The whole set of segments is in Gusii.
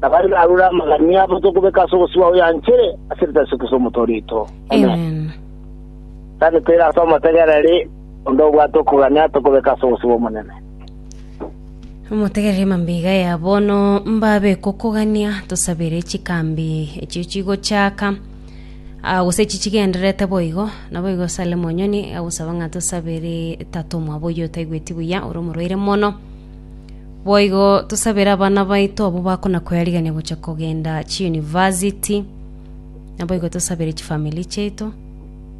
na baria barure amagani abo tokobeka ase ogosibwa oyanchire ase rieta Yesu Kristo Omotoori oito. Amen. Tari toire ase omotegereri onde obwate okogania tokobeka ase ogosibwa Omonene. Omotegereri mambia ya bono mbabe kokogania tosabere chikambi echio chigochaka ah, gose echi chigendererete boigo naboigo Salem Onyoni agosaba ng'a tosabere tatomwa boyio otaigweti buya ore omorwaire mono Boigo tosabere abana baito abwo bakona koyarigania gocha kogenda chiuniversity, naboigo tosabere chifamiri chiaito,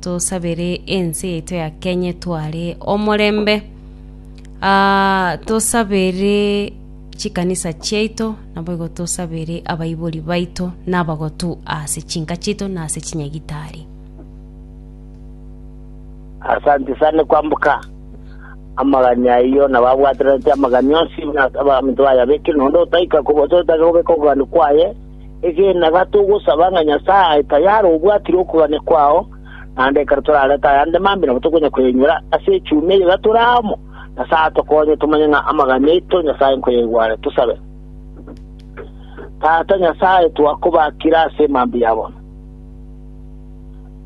tosabere ense yaito ya Kenya etware omorembe, ah, tosabere chikanisa chiaito, naboigo tosabere abaibori baito na abagotu ase chinka chiaito na ase chinyagitari. Asanti sana kwamboka amagani ayio na babwaterete amagani onsi abaminto bayabeke nonde otaika gose otake gobeka okogania kwaye egena iga togosaba ng'a Nyasaye aye tayari obwatire okogania kwao naende ekero torarete ayande mambia nabo tokonya koyenyora ase echumi eye iga tore amo Nyasaye atokonye tomanye ng'a amagani aito Nyasaye nkoyaigware tosabe Tata Nyasaye twakobakire ase mambia ya bono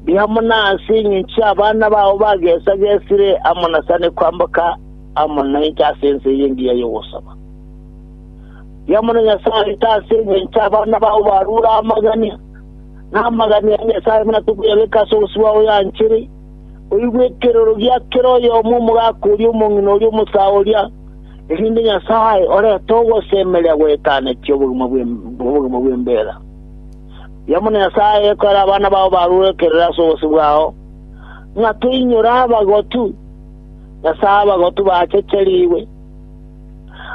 Ndi amo naase engencho y'abana bao bagesagesire amo nasane kwamboka amo nainche ase ense eye engiya y'ogosaba. Ndi amo na Nyasae aito ase engencho y'abana bao barure amagania, na amagania ya Nyasae buna tokoyabeka ase obosibwa oyoyanchere, oigwe ekeroro gia kera oyomo omogaka oria omong'ina oria omosaa oria, erinde Nyasae orete ogosemeria gwetaneti obogima bw'embeera. Yamuna Nyasae ekoera abana bao barure kerore ase obosio bwao, ng'a toinyore abagotu, na ase abagotu baachecherigwe.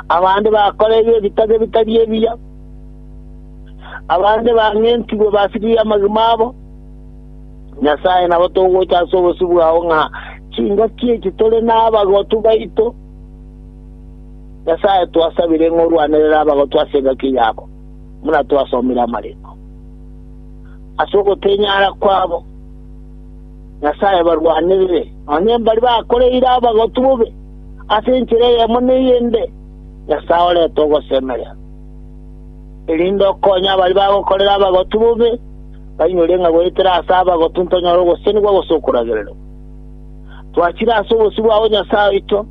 Abande bakoreirwe ebitage bitari ebiya, abande bang'entigwe basirigwe amagima abo. Nyasae, nabo togocha ase obosio bwao ng'a chingaki echi tore nabagotu baito. Nyasae, twasabire ng'a orwanerere abagotu ase engaki yabo. buna twasomire amariko. Ase ogotenyara kwabo Nyasae abarwanerire, nonya mbari bakoreire abagotu bobe ase enchera eyemo na eyende, Nyasae orete ogosemeria, erinde okonye abari bagokorera abagotu bobe, bainyore ng'a goetera ase abagotu ntonyore ogosesenigwa gose okoragererwa. Twachire ase obosio bwao Nyasae oito,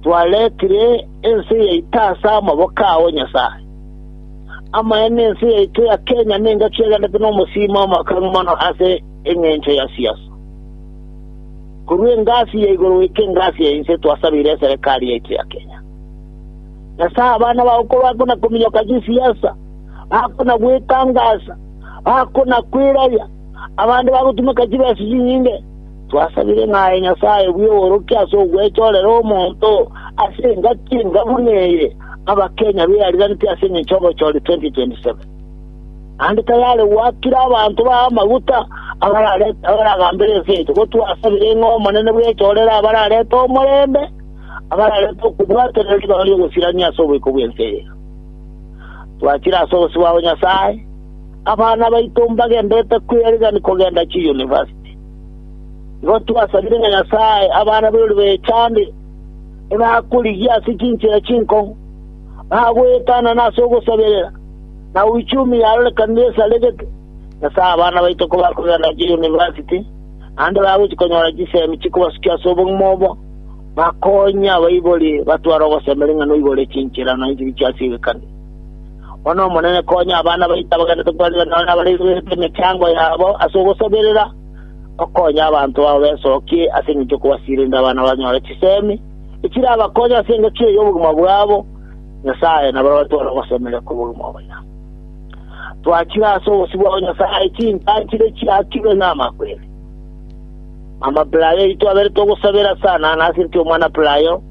twaretire ense yaito ase amaboko ao Nyasae. Amaene ense yaito ya Kenya nengaki egendete nomosimo omoakang'u mono ase engencho ya siasa. Korwa engasi ya igoro goika engasi ya inse twasabeire eserekari yaito ya Kenya. Nyasae abana bao kobakona kominyoka chisiasa, bakona gwetangasa, bakona kwirabia, abande bagotumeka chibesa chinyinge, twasabire ng'a aye Nyasae bw'oboorokia ase ogwechorera omonto ase engaki enga buna eye, Abakenya beariraneti ase engencho y'obochori 2027, naende tayare goakera abanto baye amaguta abaragambere ense yaito, gotwa ase ebirengo Omonene bw'echorere abararete omorembe, abararete okobwaterera ribaga ri'ogosirania ase oboiko bw'ense eye. Twachire ase obosio bwabo Nyasae, abana baito mbagenderete kwearigani kogenda chiyunivasiti. Igo twasabire ng'a Nyasae abana b'ebirorio bechande, ebakorigia ase chinchera chinkong'u, bagoetanana ase ogosaberera, na uchumi yarorekanire esaregete, nase abana baito kobakogenda chiyunivasiti, naende bagochia konyora chisemi chikobasukia ase obogima obo, bakonye abaibori batware ogosema ring'ana oibore chinchera nonya chiria chi'ase egekani. Bono Omonene, konya abana baito abagenderete kobarigia nao nabareiborete emechango yabo ase ogosaberera, okonye abanto bao besokie ase engencho y'okobasiria erinde abana banyore chisemi echirabakonye ase engecho eye y'obogima bwabo, Nyasae nabaroretie ore ogosemeria kw'obogima obo ira. Twachire ase obosibwa o Nyasae chinsa nchire chiakirwe namakweri. Mama Pelayo oito aberete ogosabera sana na asireti omwana Pelayo,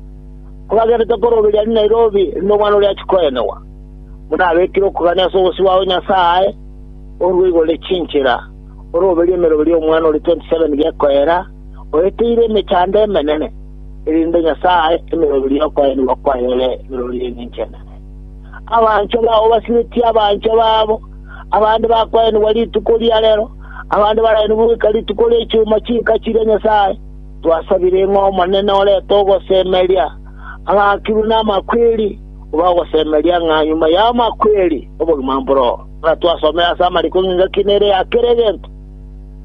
kobagenderete koroberia ni Nairobi rinde omwana oria achie koenewa. Buna abekire okogania ase obosibwa o Nyasae, orue igoro echinchera, oroberio emerobe y'omwana ore 27 gekoera, oeteire emechando emenene, erinde Nyasae ae emeroberio y'okoenigwa kwaye ore emeroberio y'engencho enene. Abanchwa bao basiretie abanchwa babo, abande bakoenigwa rituko ria rero, abande baraenigwe goika rituko ria chuma chinka chiria Nyasae twasabire, ng'a Omonene orete ogosemeria abaakirwe namakweri, obe ogosemeria ng'a nyuma y'amakweri obogima mboro. Ng'a twasomire ase amariko ng'a engaki nere ya kera egento,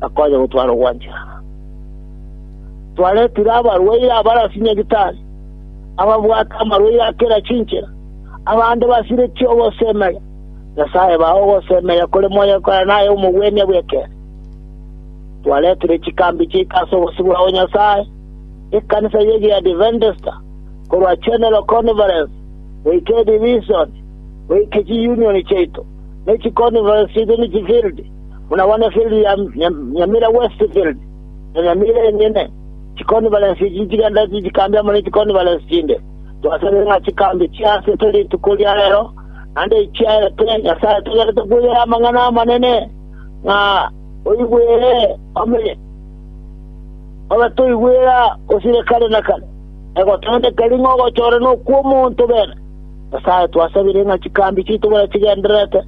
na konya gotwara ogwancherana. Twaretire abarwaire abare ase nyagitari, ababwate amarwaire a kera chinchera, abande basiretie ogosemeria. Nyasae bae ogosemeria kore monyokore na aye omogwenia bw'ekeene. Twaretire chikambi chiaito ase obosibwa o Nyasae, ekanisa ye Giadiventista, korwa General Conference goika Edivision, goika chiyunioni chiaito, ne chikonferensi chiaito ne chifildi, buna bono efildi ya Nyamira West Field na Nyamira enyene. Chikonferensi echi nchigenda chinchikambe amo ne chikonferensi chinde. Twasabire ng'a chikambe chiaasete rituko ria rero, naende echi chiaete, Nyasae togenderete kwegera amang'ana amanene, ng'a oigwere ome, obe toigwera osire kare na kare, na goteneneka ring'o ogochorerwa nokw'omonto bene. Nyasae, twasabire ng'a chikambi chiaito buna chigendererete,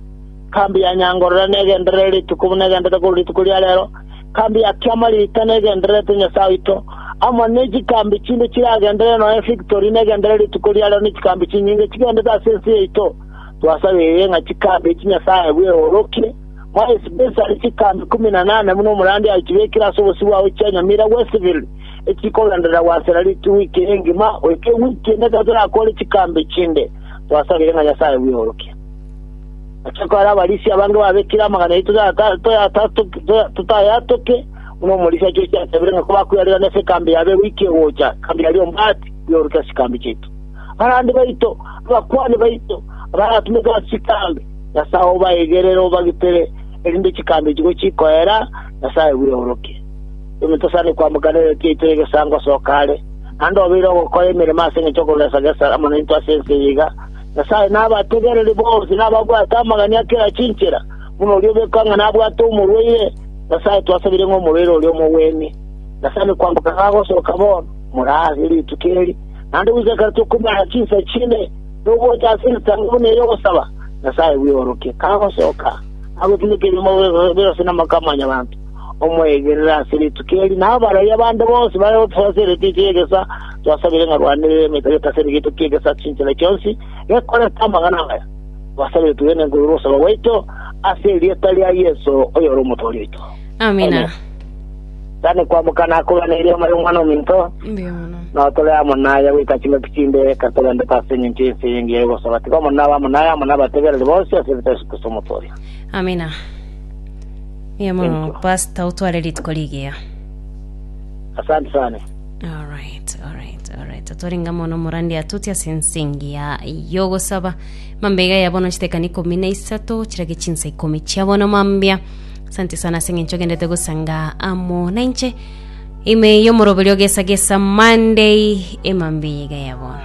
ekambi ya Nyangorore negenderere rituko buna egendererete korwa rituko ria reero, ekambi ya Kiamarita negendererete, Nyasae oito, amo ne chikambi chinde chiragenderere, nonya efektori negenderere rituko ria reero, ne chikambi chinyinge chigendererete ase ense yaito. Twasabire ng'a chikambi echi, Nyasae, bweorokie, more especially chikambi ikomi na nane buna omorandia achibekire ase obosio bwao chia nyamira Westville, echikogenderera gwasera ritugwa ike engima, goika ewiki ende ekero torakore chikambe chinde, twasabire ng'a Nyasae bw'orokia. Amachiko aria abarisia abange babekire amang'ana yaito totayatoke, buna omorisia Josi asabire ng'a kobakwerigerana ase ekambi yabo ewiki egocha, ekambi yaria ombaati, bw'oroke ase chikambe chiaito. Abarwani baito, abakuani baito, abaratumete ase chikambe, Nyasae obaigerere obagitere, erinde chikambe echi gochikoera, Nyasae bw'orokia. Onye tosani koamoka nebibe biaito egesaango asoka are, naende obeire ogokora emeremo ase engencho y'okogesa-gesa amo naintwe ase ense eye iga, Nyasae nabategereri bonsi na ababwate amagani a kera chinchera, buna oria obe kang'ana abwate omorwaire, Nyasae twasabire ng'a omorwaire oria omogwenie. Tosani koamoka iga agosoka bono, more ase rituko eri, naende goika ekero tokomenyera chinsa chinde, togocha ase egesaango buna eye ogosaba, Nyasae bw'igoro ki kagosoka, agotinekerie omobe bw'egoso na amaka a mwanyabanto, omoegerere ase rituko eri, na abarabia bande bonsi bare gotosoa ase egetukia ki'egesa, twasabire ng'a rwanderere emetwe yaito ase egetukia ki'egesa chinchera chionsi gekorete amang'ana amaya. Twasabire twegene nkoigwe ogosaba gwaito, ase erieta ria Yeso, oyore Omotoori oito. Amina. Tane kwamoka nakogana erio omare Omwana-o-minto, Mbuya mono. na otore amo naye goika chingaki chinde, ekero togendete ase engencho y'ense eye engiya y'ogosaba. Tiga omonene abe amo naye, amo nabategereri bonsi, ase erieta Yeso Kristo Omotoria. Amina. Mbuya mono Thank you. pastor otware rituko rigiya asante sana alright alright alright atwaringa mono murandi atuti ase ensingi ya yogosaba mambega ya bono chitekani ikomi na isato chirage chinsa ikomi chia bono mambia asante sana ase eng'encho gendete gosanga amo nainche ime yomoroberio gesa gesa monday emambia iga ya bono